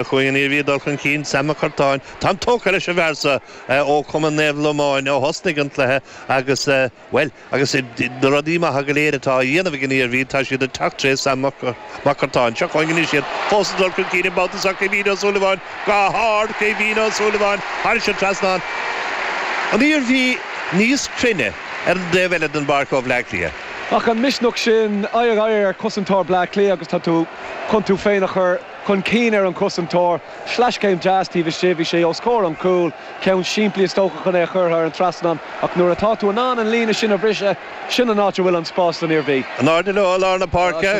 Ach an Iarmhí ag dul chun cinn, Sam Mac Curtáin, táim tógtha leis an bhfear so, ó Cumann Naomh Lomáin ó thosnaigh an cluiche agus, bhuel, agus na rudaí maithe go léir atá á dhéanamh ag an Iarmhí, tá siad ag teacht tré Sam Mac Curtáin. Seo chugainn anois iad, fós ag dul chun cinn, an babhta seo Caoimhín Ó Súilleabháin, go hard, Caoimhín Ó Súilleabháin, thairis an trasnán an Iarmhí níos cruinne ar an dtaobh eile den bpáirc ó Bhleá Cliath. Ach an misneach sin, aghaidh ar aghaidh ar chosantóir Bhleá Cliath agus tá tú chun tú féin a chur. chun cinn ar an gcosantóir, sleaschéim deas taobh istigh, bhí sé os comhair an chúil, ceann simplí is dócha chun é a chur thar an trasnán ach nuair atá tú in ann an líne sin a bhriseadh, sin an áit a bhfuil an spás don Iarmhí. In airde leo i lár na páirce,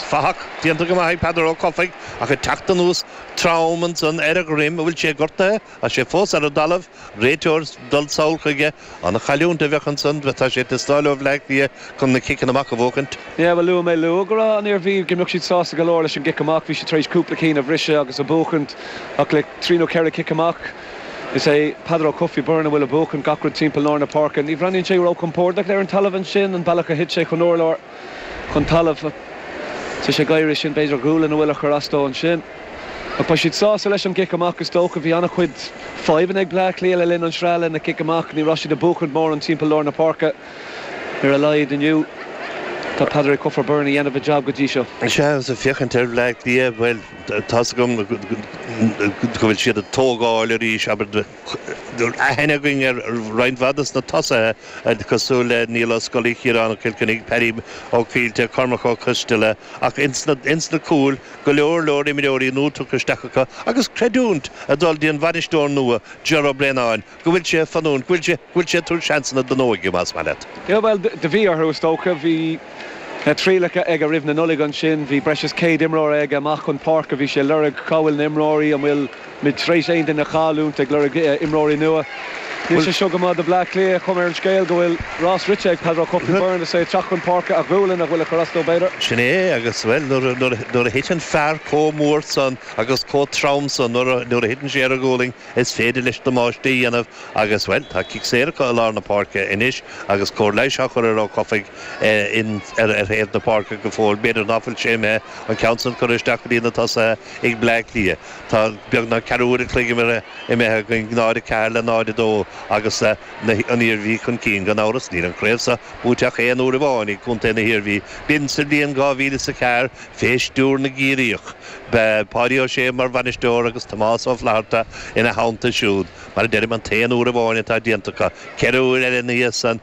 fathach déanta go maith ag Peadar Ó Cofaigh ach ag teacht anuas trom ansan ar a dhroim, an bhfuil sé gortaithe tá sé fós ar an dtalamh. Réiteoir, Dul sall chuige, ana-chailliúint a bheadh ansan tá sé ag teastáil ó Bhleá Cliath chun na ciceanna amach a bhuachaint. Yeah bhuel luaigh mé luath go raibh an Iarmhí go mbeadh siad sásta go leor leis an gcic amach, bhí siad tar éis cúpla cinn a bhriseadh agus a bhuachaint ach le trí nó ceithre chic amach is é Peadar Ó Cofaigh, Byrne a bhfuil a bhuachaint gach rud timpeall lár na páirce. Ní bhreathnaíonn sé ró-chompórdach ar an talamh ansin, an bealach a thit sé chun urláir, chun talamh. Tá sé ag éirí sin, b'fhéidir a ghualainn a bhfuil a chur as dó ansin. Ach beidh siad sásta leis an gcic amach, is dócha. Bhí an-chuid fadhbanna ag Bleá Cliath le linn an sraith le na cic amach. Ní raibh siad ag buachaint móran timpeall lár na páirce, ar a laghad inniu. Tá Peadar Ó Cofaigh Byrne a dhéanamh a jab go dtí seo. Sea, ag féachaint ar Bhleá Cliath, bhuel, tá's agam go bhfuil siad ag tógáil arís, abair. Tá aithne againn ar roinnt mhaith des na tosaithe, cosúil le Niall Ó Scolaí, Ciarán Kilkenny, Paddy Óg Fíllte, Cormac Ó Coisdeala, ach ins na cúil, go leor leor imreoirí nua tugtha isteach acu agus creidiúint ag dul dtí an bhainisteoir nua, Ger Ó Braonáin, go bhfuil sé fanúint, go bhfuil sé ag tabhairt seansanna don óige, más maith leat. Io, bhuel, do bhí orthu, is dócha. Bhí na trialacha aige roimh na Nollag ansin. Bhí breis is céad imreoir aige amach chun páirce. Bhí sé ag lorg cá bhfuil na imreoirí, an bhfuil Muid tar éis aon duine a chailliúint ag lorg imreoirí nua. Níl sé seo go maith do Bhleá Cliath. Cuma ar an scéal go bhfuil rás rite ag Peadar Ó Cofaigh Byrne is é ag teacht chun páirce a ghualainn a bhfuil ag cur as dó b'fhéidir. Sin é agus, bhuel, nuair a thiteann fear comh mór san agus comh trom san, nuair a thiteann sé ar a ghualainn is féidir leis damáiste a dhéanamh agus, bhuel, tá cic saor acu i lár na páirce anois agus cóir leighis á chur ar Ó Cofaigh ar thaobh na páirce go fóill. B'fhéidir ná fuil sé imithe, an ceann san curtha isteach go dtí na tosaithe ag Bleá Cliath. Tá beagnach ceathrú uair an chloig imithe againn, 0-4 le 0-2 agus an Iarmhí chun cinn. Gan amhras, níl an chraobh seo buaite ach aon uair amháin ag contae na hIarmhí. B'in sa bhliain 2000 is a ceathair fé stiúr na gCiarraíoch. B'e Páidí Ó Sé mar bhainisteoir agus Tomás Ó Flatharta ina theannta siúd. Mar a deirim, an t-aon uair amháin atá déanta acu. Ceithre uair eile ina dhiaidh san,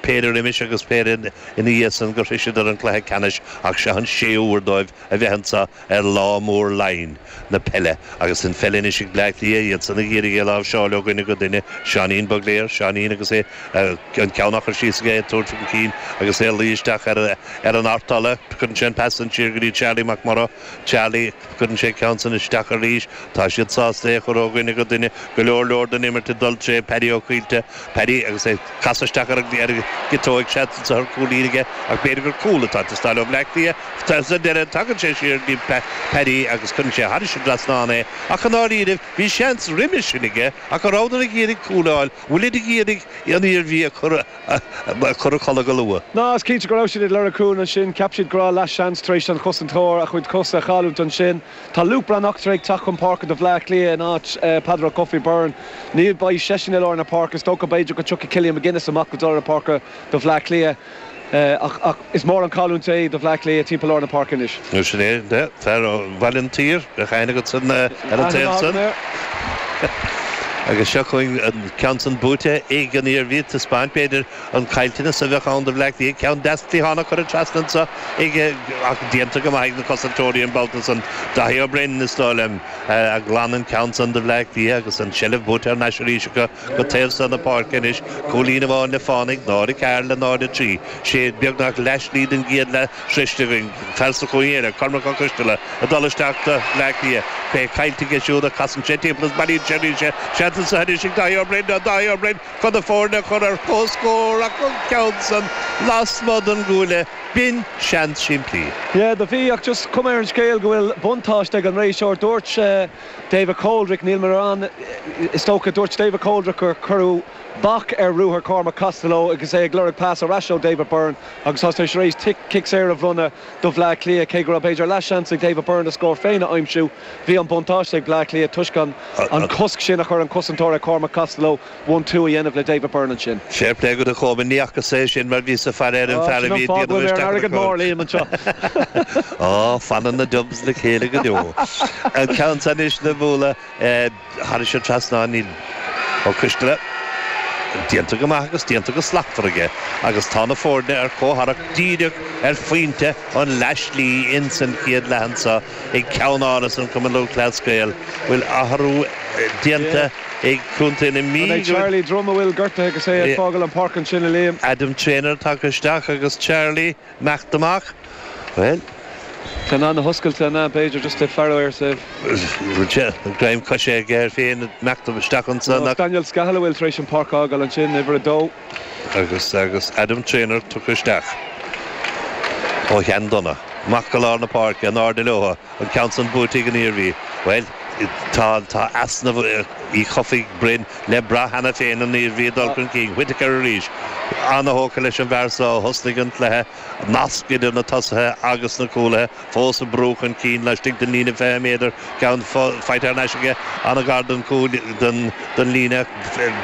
péire roimis agus péire ina dhiaidh san gur shroiseadar an cluiche ceannais ach seo an séú huair dóibh. a bheith anseo ar lá mór Laighean, na peile, agus an pheil anois ag Bleá Cliath, iad san ag iarraidh é a láimhseáil ó dhuine go duine, Seáinín Bugler, Seáinín agus é an ceann á chur síos aige, é ag tabhairt chun cinn agus é ag luí isteach ar an artola, cuireann sé an pas san siar go dtí Charlie McMorrow, Charlie, cuireann sé a cheann san isteach arís, tá siad sásta é a chur ó dhuine go duine, go leor leor den imirt ag dul tré Paddy Ó Caoilte, Paddy agus é ag casadh isteach ar an gciotóig. Seans anso ar chúilín aige ach b'fhéidir gur cúl atá ag teastáil ó Bhleá Cliath. Sa deireadh tagann sé siar go dtí Paddy agus cuireann sé thairis an trasnán é ach i ndáiríribh bhí seans roimis sin aige ach go rabhadar ag iarraidh cúl a fháil. An bhfuilid ag iarraidh an Iarmhí a chur a chodladh go luath? Á is cinnte go raibh siad ag lorg cúil ansin. Cheap siad go raibh leath seans tar éis don chosantóir a chuid cosa a chailliúint ansin. Tá Luke Breathnach ag teacht chun páirce do Bhleá Cliath in áit Peadar Ó Cofaigh Byrne. Ní bheidh seisean i lár na páirce. Is dócha b'fhéidir go dtiocfaidh Killian McGinnis amach go lár na páirce do Bhleá Cliath ach is mór an chailliúint é do Bhleá Cliath timpeall lár na páirce anois. Ó sin é, fear Bhaile an tSaoir a chaill agatsan ar an taobh san. Agus seo chugainn an ceann san buaite ag an Iarmhí, taispeáint b'fhéidir An caillteanas a bheadh ann do Bhleá Cliath ceann deas cliatháin a chuireadh trasna anseo ag ach déanta go maith ag na cosantóirí an babhta san. Daithí Ó Broin, is dóigh liom, a ghlan an ceann san do Bhleá Cliath agus an tseilbh buaite thar n-ais arís acu go taobh so na páirce anois. Cúilín amháin le fánaidh, 0-4 le 0-3. Sé beagnach leath-slí den gcéad leath sroiste againn. Fear sa chúinne eile, Cormac Ó Coisteala, ag dul isteach do Bhleá Cliath. É caillte aige siúd ach casann sé timpeall is bailíonn sé arís é. Seans anso anois ag Daithí Ó Broin. Daithí Ó Broin! chun na foirne a chur ar chomhscór ach an ceann san lasmuigh den gcuaille, b'in seans simplí. Yeah, do bhí, ach just cuma ar an scéal go bhfuil buntáiste ag an réiteoir. Dúirt David Coldrick, níl mé ar an, is dócha, dúirt David Coldrick gur cuireadh bac ar ruathar Chormac Costello agus é ag lorg pas ar ais ó David Byrne agus tá sé tar éis cic saor a bhronnadh do Bhleá Cliath, cé go raibh b'fhéidir leathsheans ag David Byrne a scór féin a aimsiú. Bhí an buntáiste ag Bleá Cliath toisc an cosc sin a chuir an cosantóir ar Chormac Costello one-two a dhéanamh le David Byrne ansin. Fair play dhuit a Chomáin, ní fhacasa é sin mar bhíos ag faire ar an fear a bhí ag déanamh isteach ar an gcúl. Fanann na Dubs le chéile go deo. An ceann san anois le bualadh. Thairis an trasnán é, Ó Coisteala. Déanta go maith agus déanta go slachtmhar aige agus tá na foirne ar comhtharrac díreach ar phointe an leathshlí in san chéad leath anso ag Ceannáras an Cumann Lúthchleas Gael bhfuil athrú déanta ag Contae na Mí. An é Charlie Drumm a bhfuil gortaithe agus é ag fágáil an páirc ansin, a Liam? Adam Treanor tagtha isteach agus Charlie. Meacht amach, bhuel. Tá na na hoscailte an ea? B'fhéidir just le faire air saobh. Greim coise aige air féin ag imeacht isteach ansan ach. Daniel Scahill a bhfuil tar éis an páirc fhágáil ansin, uimhir a dó. Agus agus Adam Treanor tugtha isteach. Ó Shandonagh. Amach go lár na páirce, in airde leotha. An ceann san buaite ag an Iarmhí. Bhuel, tá easnamh Uí Chofaigh Broin, le brath cheana féin, an Iarmhí ag dul chun cinn. Whittaker arís. An-thógtha leis an bhfear so a thosnaigh an cluiche. Nasc idir na tosaithe agus na cúlaithe. Fós ag brú chun cinn laistigh den líne fiche méadar. Ceann faighte thar n-ais aige. An-ghar don chúl, don líne.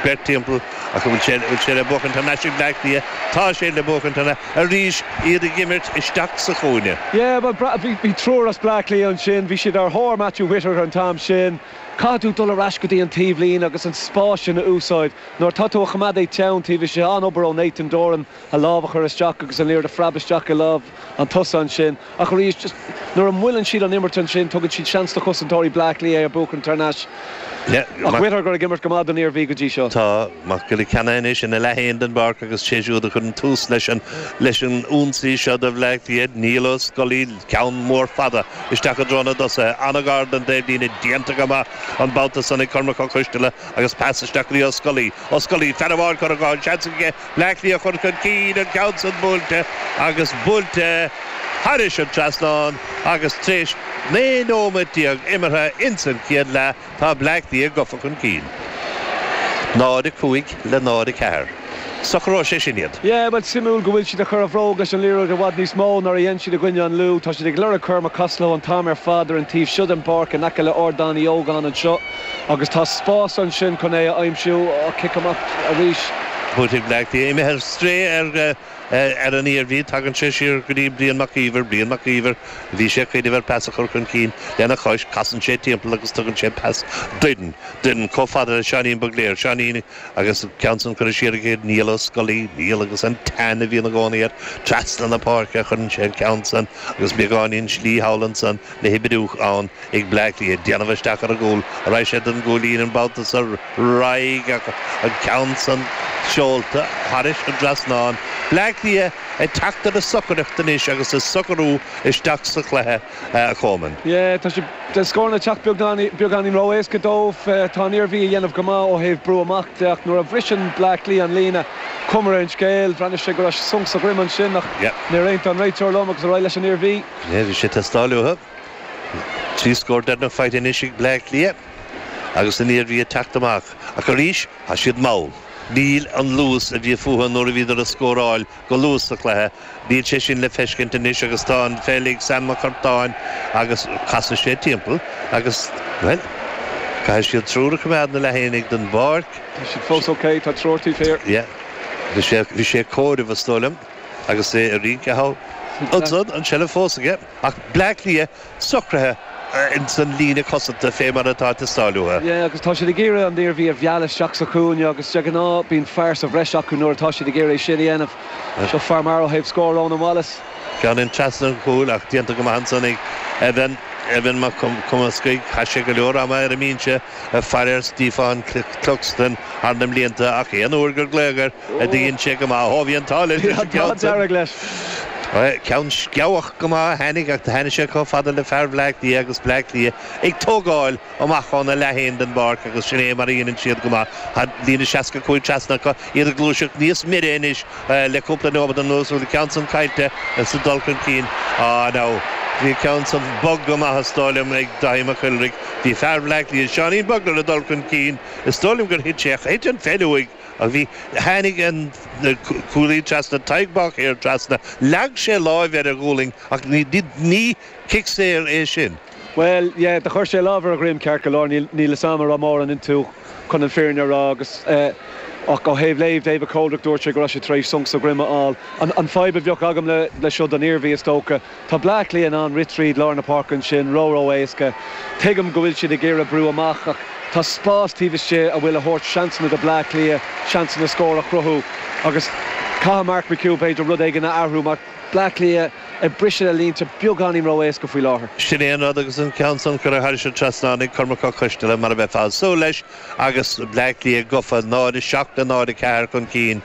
Beirt timpeall. Ach an bhfuil sé le buachaint thar n-ais ag Bleá Cliath? Tá sé le buachaint an arís, iad ag imirt isteach sa chúinne. Yeah, bhuel, bhí triúr as Bleá Cliath ansin, bhí siad ar thóir Matthew Whittaker an t-am sin. Caithfidh tú dul ar ais go dtí an taobhlíne agus an spás sin a úsáid. Nuair atá tú a choimeád é teann taobh istigh, an-obair ó Nathan Doran a lámh a chur isteach agus an liathróid a phreab isteach i lámh An tosaí ansin. Ach arís, just nuair a mhoilleann siad an imirt ansin, tugann siad seans do chosantóirí Bleá Cliath é a bhuachan thar n-ais. Ach Whittaker ag imirt go maith don Iarmhí go dtí seo. Tá Mac Giolla Chainnigh anois ina leath féin den bpáirc agus sé siúd a chuireann tús leis an leis an ionsaí seo do Bhleá Cliath, Niall Ó Scolaí. Ceann mór fada isteach i dtreo na dtosaithe. An-ghar don dtaobhlíne. Déanta go maith an babhta san ag Cormac Ó Coistealla agus pas isteach go dtí Ó Scolaí. Ó Scolaí, fear amháin curtha go han-seans aige. Bleá Cliath a chur chun cinn, an ceann san buailte agus buailte thairis an trasnán agus tar éis 19 nóiméad imeartha ins an chéad leath tá Bleá Cliath gafa chun cinn. 0, 5 le 0, 4. Socróidh sé sin iad. Yeah, bhuel, suimiúil go bhfuil siad ag cur a bhróg leis an liathróid i bhfad níos mó ná mar a dhein siad i gcoinne an Lú. Tá siad ag lorg Cormac Costello an t-am ar fad ar an taobh seo den bpáirc in aice le Ardán Uí Ógáin anseo. Agus tá spás ansin chun é a aimsiú, an cic amach arís. Buaite ag Bleá Cliath, imithe ar strae ar an Iarmhí, tagann sé siar go dtí Brian Mac Íomhair, Brian Mac Íomhair, Bhí sé ag cuimhneamh ar pas a chur chun cinn lena chois, casann sé timpeall agus tugann sé pas Doran, Doran chomh fada le Seáinín Bugler, Seáinín agus an ceann san curtha siar aige go dtí Niall Ó Scolaí, Niall agus an teann a bhíonn i gcónaí air trasna na páirce a chuireann sé an ceann san agus beagáinín slí thall ansan le hoibriú ann. ag Bleá Cliath ag déanamh isteach ar an gcúl. Raghaidh sé don gcúilín an babhta so. Raghaidh, an ceann san seolta thairis an trasnán. Bleá Cliath ag teacht ar a socaireacht anois agus ag socrú isteach sa chluiche a Chomáin. Tá na scóranna ag teacht beagáinín ró-éasca dóibh. Tá an Iarmhí a dhéanamh go maith ó thaobh brú amach de ach nuair a bhriseann Bleá Cliath an líne chuma ar an scéal, bhreathnaigh sé go raibh sonc sa droim ansin ach níor aontaigh an réiteoir liom agus ar aghaidh leis an Iarmhí. Bhí sé ag teastáil uathu. Trí scór deireanach faighte anois ag Bleá Cliath agus an Iarmhí ag teacht amach, ach arís tá siad mall. Níl an luas a bhí fúthu nuair a bhíodar ag scóráil go luath sa chluiche, níl sé sin le feiscint anois agus tá an pheil ag Sam Mac Cartáin agus casfaidh sé timpeall agus, bhuel, caithfidh siad triúr a choimeád ina leath fhéinig den bpáirc. Tá siad fós ok, tá triúr taobh thiar. Yeah, bhí sé ag comhaireamh is dóigh liom agus é ag rince thall. Ansan, an tseilbh fós aige. Ach Bleá Cliath socraithe ins an líne cosanta fé mar atá ag teastáil uathu. Yeah agus tá siad ag iarraidh an Iarmhí a mhealladh isteach sa chúinne agus de ghnáth bíonn fear sa bhreis acu nuair atá siad ag iarraidh é sin a dhéanamh. Seo fear maith ó thaobh scór Rónán Wallace. Ceann in trasna an chúil ach déanta go maith ansan ag Evan, Evan Mac Cumascaigh. Chaith sé go leor ama ar an mbínse ag faire ar Stiofán Cluxton thar na mblianta ach aon uair gur glaodh air, do dhein sé go maith. Ó, bhí an t-ádh leis leis an gceann san. An t-ádh dearg leis. Ceann sceabhach go maith a tháinig, ach do tháinig sé chomh fada le fear Bhleá Cliath agus Bleá Cliath ag tógáil amach óna leath fhéin den bpáirc agus sin é mar a dheineann siad go maith. Tá líne 65 trasna acu, iad ag gluaiseacht níos mire anois le cúpla nóiméad anuas. Bhuel, an ceann san caillte sa dul chun cinn. Á, now, bhí an ceann san bog go maith is dóigh liom ag Dáithí Mac Iolraigh. Bhí fear Bhleá Cliath, Seánín Bugler, ag dul chun cinn. Is dóigh liom gur thit sé, thit an pheil uaidh. Ach bhí. Tháinig an cúlaí trasna Tadhg Mhac Uidhir trasna, leag sé lámh ar a ghualainn ach ní cic saor é sin. Bhuel, yeah, do chuir sé lámh ar a dhroim, ceart go leor, níl fhios a'm a' raibh mórán iontu chun an fhírinne a rá agus eh ach ó thaobh léamh David Coldrick dúirt sé go raibh sé tar éis sonc sa dhroim a fháil. An fhadhb a bheadh agam le seo don Iarmhí is dócha, Tá Bleá Cliath in ann rith tríd lár na páirce ansin ró-ró-éasca. Tuigim go bhfuil siad ag iarraidh brú amach ach tá spás taobh istigh a bhfuil a thabhairt seansanna do Bleá Cliath seansanna scór a chruthú agus caithfidh Mark McHugh b'fhéidir rud éigin a athrú mar Bleá Cliath ag briseadh na línte beagáinín ró-éasca faoi láthair. Sin é an rud agus an ceann san curtha thairis an trasnán ag Cormac Ó Coisteala mar a bheifeá ag súil leis agus Bleá Cliath gofa 0:07 le 0:04 chun cinn.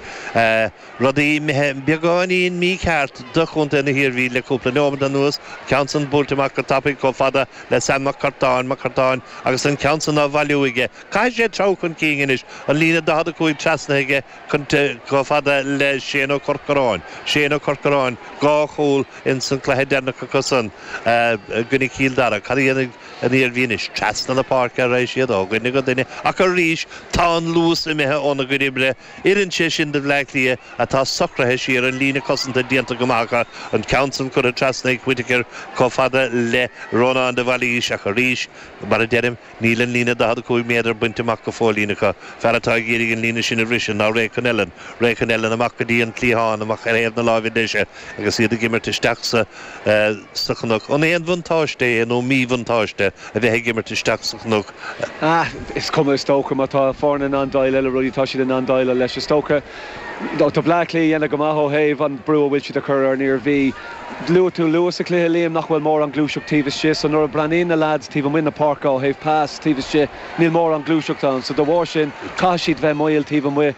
Rudaí imithe beagáinín mícheart do Chontae na hIarmhí le cúpla neomad anuas, ceann san buailte amach go tapaidh chomh fada le Sam Mac Cartáin, Mac Cartáin, agus an ceann san á bhailiú aige. Caithfidh sé treabhadh chun cinn anois, an líne 45 trasnaithe aige chomh fada le Shane Ó Corcoráin. Shane Ó Corcoráin, dhá chúl ins an cluiche deireanach acusan i gcoinne Chill Dara. Cad a dhéanfaidh an Iarmhí anois? Trasna na páirce a raghaidh siad, ó dhuine go duine, ach arís tá an luas imithe óna gcuid oibre. Oireann sé sin do Bhleá Cliath atá socraithe siar, an líne cosanta déanta go maith acu, an ceann san curtha trasna ag Whittaker chomh fada le Rónán de Bhailís ach arís, mar a deirim, níl an líne 45 méadar bainte amach go fóillín acu. Fear atá ag iarraidh an líne sin a bhriseadh ná Ray Connellan. Ray Connellan amach go dtí an cliathán, amach ar thaobh na láimhe deise. agus iad ag imirt isteach sa chnoc. An aon bhuntáiste é nó míbhuntáiste a bheith ag imirt isteach sa chnoc? Is cuma is dócha. Má tá foireann in ann déileáil le rudaí tá siad in ann déileáil leis. Is dócha tá Bleá Cliath ag déanamh go maith ó thaobh an brú a bhfuil siad a chur ar an Iarmhí. Luaigh tú luath sa chluiche, Liam, nach bhfuil mórán gluaiseacht taobh istigh. So nuair a bhreathnaíonn na lads taobh amuigh na páirce ó thaobh pass taobh istigh, níl mórán gluaiseacht ann. So da bharr sin caithfidh siad bheith mall taobh amuigh.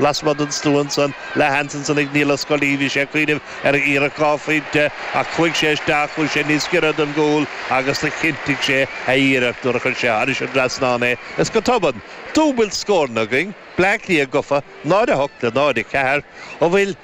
Lasmuigh den stua ansan, leathsheans ansan ag Niall Ó Scolaí, bhí sé ag cuimhneamh ar iarracht dhá phointe ach chuaigh sé isteach, chuaigh sé níos giorra don gcúl agus do chinntigh sé a iarracht nuair a chuir sé thairis an trasnán é is go tobann, dúbailt scóranna againn, Bleá Cliath gofa, 0:08 le 0:04, an bhfuil.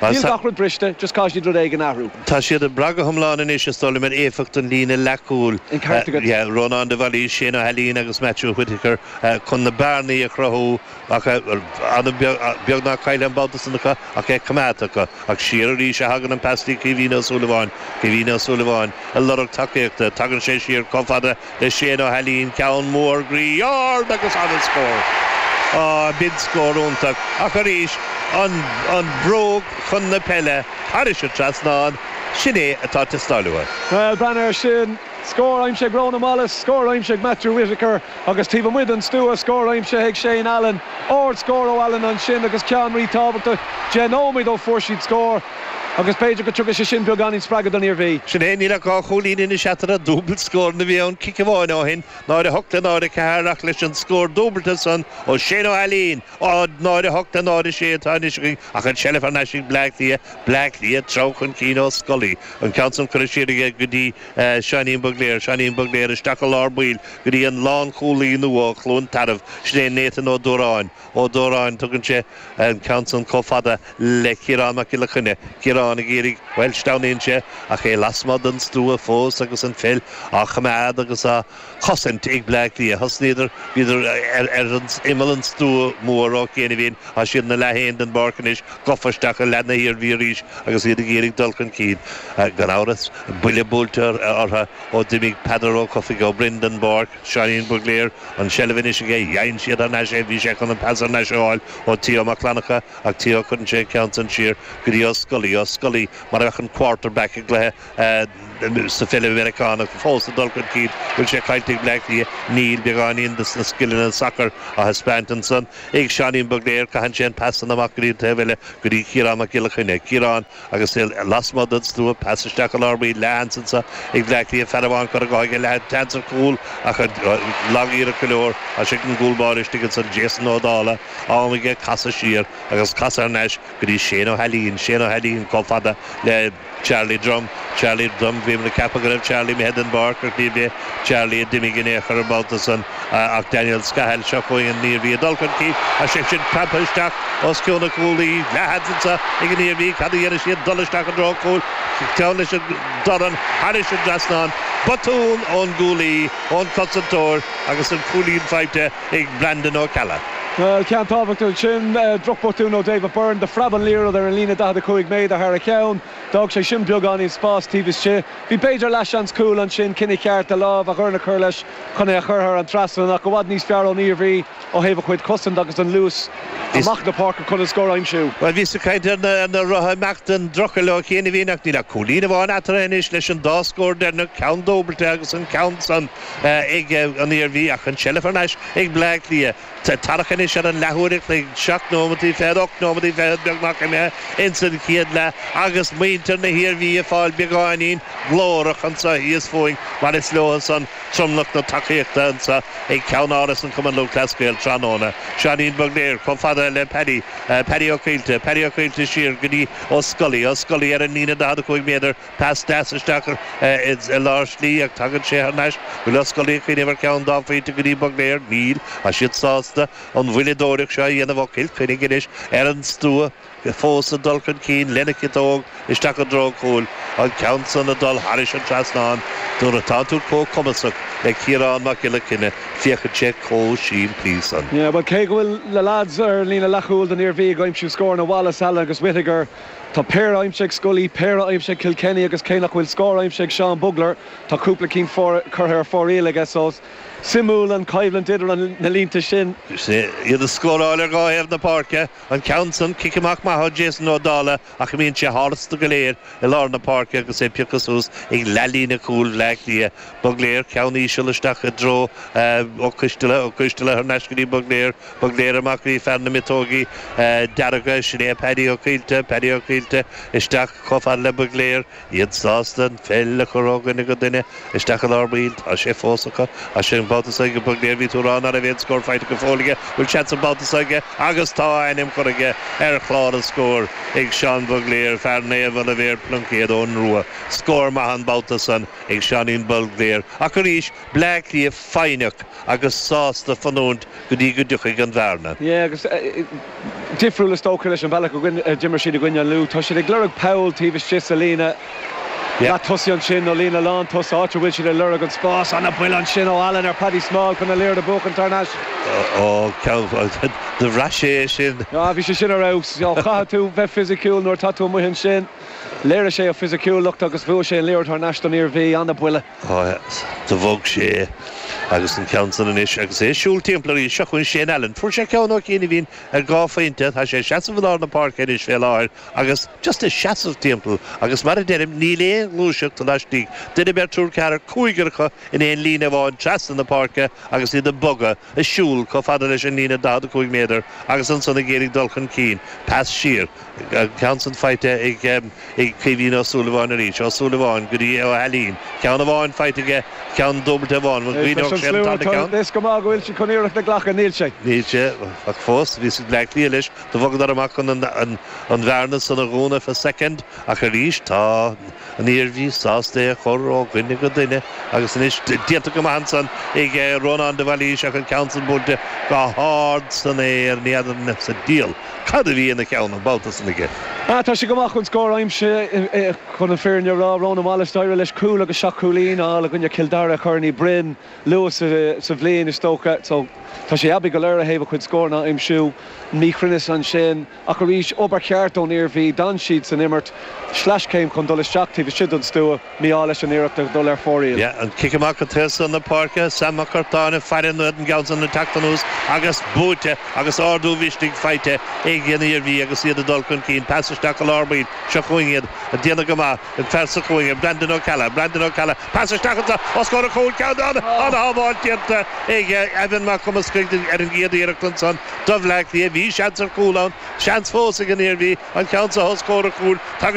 Níl gach rud briste, just caithfidh siad rud éigin a athrú. Tá siad ag brath go hiomlán anois, is dóigh liom, ar éifeacht an líne leathchúil, Rónán de Bhailís, Shane Ó hAilín agus Matthew Whittaker, chun na bearnaí a chruthú ach beagnach caillte an babhta san acu ach é coimeádta acu. Ach siar arís a thagann an pas go dtí Caoimhín Ó Súilleabháin, Caoimhín Ó Súilleabháin, ag lorg tacaíochta. Tagann sé siar chomh fada le Shane Ó hAilín, ceann mór groí ard agus ana-scór! Aww b'in scór iontach ach arís an bhróg chun na peile thairis an trasnán, sin é atá ag teastáil uaidh. Bhuel breathnaigh ar sin! Scór aimsithe ag Ronan Wallace, scór aimsithe ag Matthew Whittaker agus taobh amuigh den stua scór aimsithe ag Shane Allen. Ard scór ó Allen ansin agus ceann ríthábhachtach deich nóiméad ó fuair siad scór. Agus b'fhéidir go dtugadh sé sin beagáinín spreagadh don Iarmhí. Sin é, níl ach dhá chúilín anois eatarthu, dúbailt scóranna a bhí ann cic amháin ó shin, 0-8 le 0-4, ach leis an scór dúbailte san ó Shane Ó hAilín, 0-8 le 0-6 atá anois againn ach an tseilbh thar n-ais ag Bleá Cliath, Bleá Cliath ag treabhadh chun cinn, Ó Scolaí, an ceann san curtha siar aige go dtí Seáinín Bugler, Seáinín Bugler isteach i lár baill go dtí an lánchúlaí nua ó Chluain Tarbh, sin é Nathan Ó Dúráin. Ó Dóráin, tugann sé an ceann san comh fada le Ciarán Mac Giolla Chainnigh. Ciarán ag iarraidh, bhuel, sleamhnaíonn sé, ach é lasmuigh den stua fós agus an pheil á choimeád agus á chosaint ag Bleá Cliath. Thosnaíodar, bhíodar ar imeall an stua mhóir ó chianaibhín, tá siad ina leath féin den bpáirc anois, gofa isteach i leath na hIarmhí arís agus iad ag iarraidh dul chun cinn. Gan amhras, buille buailte ortha ó d'imigh Peadar Ó Cofaigh Ó Broin den bpáirc. Seáinín Bugler, an tseilbh anois aige. Dhein siad thar n-ais é. Bhí sé chun an pas thar n-ais a fháil ó Theo Mac Fhlannchadha ach Theo, cuireann sé an ceann san siar go dtí Ó Scolaí. Ó Scolaí mar a bheadh an quarter back i gcluiche sa pheil Mheiriceánach fós ag dul chun cinn. Bhfuil sé caillte ag Bleá Cliath? Níl. Beagáinín de sna scileanna sacair á thaispeáint ansan ag Seáinín Bugler. Caitheann sé an pas san amach go dtí an taobh eile go dtí Ciarán Mac Giolla Chainnigh. Ciarán. Agus é lasmuigh den slua, pas isteach go lár baill leathsheans anso ag Bleá Cliath, fear amháin curtha dhó aige, leathsheans ar chúl ach an lagiarracht go leor as ag an gcúl báire istigh ansan, Jason Ó Dála, am aige casadh siar agus casadh thar n-ais go dtí Shane Ó hAilín, Shane Ó hAilín comh fada le Charlie Drum, Charlie Drum, bhíomar ag ceapadh go raibh Charlie imithe den bpáirc ach níorbh é Charlie a d'imigh in aon chor an babhta san. Ach Daniel Scahill, seo chugainn an Iarmhí ag dul chun cinn as sé sin preabtha isteach os cionn an chúlaí. Leathsheans anso ag an Iarmhí, cad a dhéanfaidh siad, dul isteach i dtreo cúil? Ceann leis an dorn thairis an trasnán. Botún ón gcúlaí, ón cosantóir agus an cúilín faighte ag Brandon Ó Ceallaigh. Bhuel, ceann tábhachtach ansin. Drochbotún ó David Byrne, do phreab an liathróid ar an líne 45 méadar thar a cheann. D'fhág sé sin beagáinín spás taobh istigh. Bhí b'fhéidir leathsheans cúil ansin, cinneadh ceart, a lámh, a dhorn a chur leis. Chun é a chur thar an trasnán ach i bhfad níos fearr ón Iarmhí ó thaobh a cuid cosaint agus an luas amach na páirce chun an scór a aimsiú. Bhuel, bhíos ag caint ar na rotha ag imeacht den dtrucail ó chianaibhín ach níl ach cúilín amháin eatarthu anois leis an dá scór deireanach, ceann dúbailte agus an ceann san ag an Iarmhí ach an tseilbh thar n-ais ag Bleá Cliath. Tá tarrac anois ar an leathuair a chloig, seacht nóimeataí fichead, ocht nóimeataí fichead beagnach imithe ins an chéad leath agus muintir na hIarmhí ag fáil beagáinín glórach anso thíos fúinn mar is leotha-san tromlach na tacaíochta anso ag Ceannáras an Chumann Lúthchleas Gael tráthnóna. Seáinín Bugler chomh fada le Paddy, Paddy Ó Caoilte, Paddy Ó Caoilte siar go dtí Ó Scolaí, Ó Scolaí ar an líne daichead a cúig méadar, Pas deas isteach i lár slí ach tagann sé thar n-ais, bhfuil Ó Scolaí ag cuimhneamh ar cheann dá phointe go dtí Bugler. Níl, tá siad sásta an mhoilleadóireacht seo a dhéanamh Mac Giolla Chainnigh anois ar an stua fós ag dul chun cinn lena chiotóg isteach i dtreo cúil an ceann san ag dul tharis an trasnán. Nuair atánn tú comh cumasach le Ciarán Mac Giolla Chainnigh féachann sé comh simplí san. Yeah, bhuel cé go bhfuil na lads ar an líne leathchúil don Iarmhí ag aimsiú scóranna, Wallace, Allen agus Whittaker, Tá péire aimsithe ag Scully, péire aimsithe ag Kilkenny agus cé nach bhfuil scór aimsithe ag Seán Bugler, tá cúpla cinn curtha ar fóraoil aige so is suimiúil an choimhlint idir na línte sin. Is iad ag scóráil ar dhá thaobh na páirce an ceann san, cic amach maith ó Jason Ó Dála ach imíonn sé tharstu go léir i lár na páirce agus é pioctha suas ag leathlíne cúil Bhleá Cliath. Bugler, ceann íseal isteach i dtreo Ó Coistealla, Ó Coistealla thar n-ais go dtí Bugler, Bugler amach go dtí fear na miotógaí dearga, sin é Paddy Ó Caoilte, Paddy Ó Caoilte isteach chomh fada le Bugler, iad sásta an pheil a chur ó dhuine go duine, isteach i lár baill, tá sé fós acu, as sin an babhta so ag Bugler, bhí tú ag rá ná raibh aon scór faighte go fóill aige, bhfuil seans an babhta so aige agus tá a ainm curtha aige ar chlár an scóir ag Seán Bugler, fear Naomh Oilibhéar Pluincéid Eoghan Rua, scór maith an babhta san ag Seáinín Bugler, ach arís Bleá Cliath foighneach agus sásta fanúint go dtí go dtiocfaidh an bhearna. Yeah agus difriúil is dócha leis an bhealach a d'imir siad i gcoinne an Lú. Tá siad ag lorg poll taobh istigh sa líne leath tosaigh ansin nó líne lán tosaigh, áit a bhfuil siad ag lorg an spás. Ana-bhuille ansin ó Allen ar Paddy Small chun an liathróid a bhuachan tar n-ais. Ó, ceann, do bhraith sé é sin? Ah bhí sé sin ar fheabhas. Ó chaithfidh tú bheith fisiciúil nuair atá tú amuigh ansin. Léirigh sé a fisiciúlacht agus bhuaigh sé an liathróid thar n-ais don Iarmhí. Ana-bhuille. Do bhog sé agus an ceann san anois agus é ag siúl timpeall arís. Seo chugainn Shane Allen. Fuair sé ceann ó chianaibhín ar dhá phointe. Tá sé ag seasamh i lár na páirce anois fé láthair agus just ag seasamh timpeall agus mar a deirim níl aon ghluaiseacht laistigh. Duine, beirt, triúr, ceathrar, cúigear acu in aon líne amháin trasna na páirce agus iad ag bogadh, ag siúl chomh fada leis an líne 45 méadar agus ansan ag iarraidh dul chun cinn. Pas siar. An ceann san faighte ag ag Caoimhín Ó Súilleabháin arís. Ó Súilleabháin go dtí Ó hAilín. Ceann amháin faighte aige, ceann dúbailte amháin. An gcuimhneodh sé an tarna ceann? Is cuma go bhfuil siad chun iarracht a ghlacadh, níl sé. Níl sé, ach fós, bhí Bleá Cliath leis, do bhogadar amach chun an bhearna san a dhúnadh for second, ach arís tá. An Iarmhí sásta é a chur ó dhuine go duine agus anois déanta go maith ansan ag Rónán de Bhailís ach an ceann san buailte go hard san aer, ní fheadar sa diabhal cad a bhí ina cheann an babhta san aige. Tá sé go maith chun scór a aimsiú chun an fhírinne a rá. Rónán Wallace, d'éirigh leis cúl agus seacht chúilín a fháil i gcoinne Chill Dara i gCorn Uí Bhroin luath sa bhliain is dócha so tá sé aibí go leor ó thaobh a chuid scóranna a aimsiú. Míchruinneas ansin. Ach arís, obair cheart don Iarmhí. D'fhan siad san imirt. Sleaschéim chun dul isteach taobh istigh den stua. Mí-ádh leis an iarracht a dhul ar fóraoil. Yeah, an cic amach go taobh san na páirce, Sam Mac Curtáin ag faire in éadan Gheansaithe na teacht anuas agus buaite agus ardú misnigh faighte ag an Iarmhí agus iad ag dul chun cinn. Pas isteach go lár baill, seo chugainn iad, ag déanamh go maith, ag faire sa chúinne, Brandon Ó Ceallaigh, Brandon Ó Ceallaigh. Pas isteach ansan os comhair an chúil ceann ann ana-shábháil déanta ag Evan Mac Cumascaigh ar an gcéad iarracht ansan do Bhleá Cliath. Bhí seans ar chúl ann, seans fós ag an Iarmhí an ceann seo os comhair an chúil. Tagann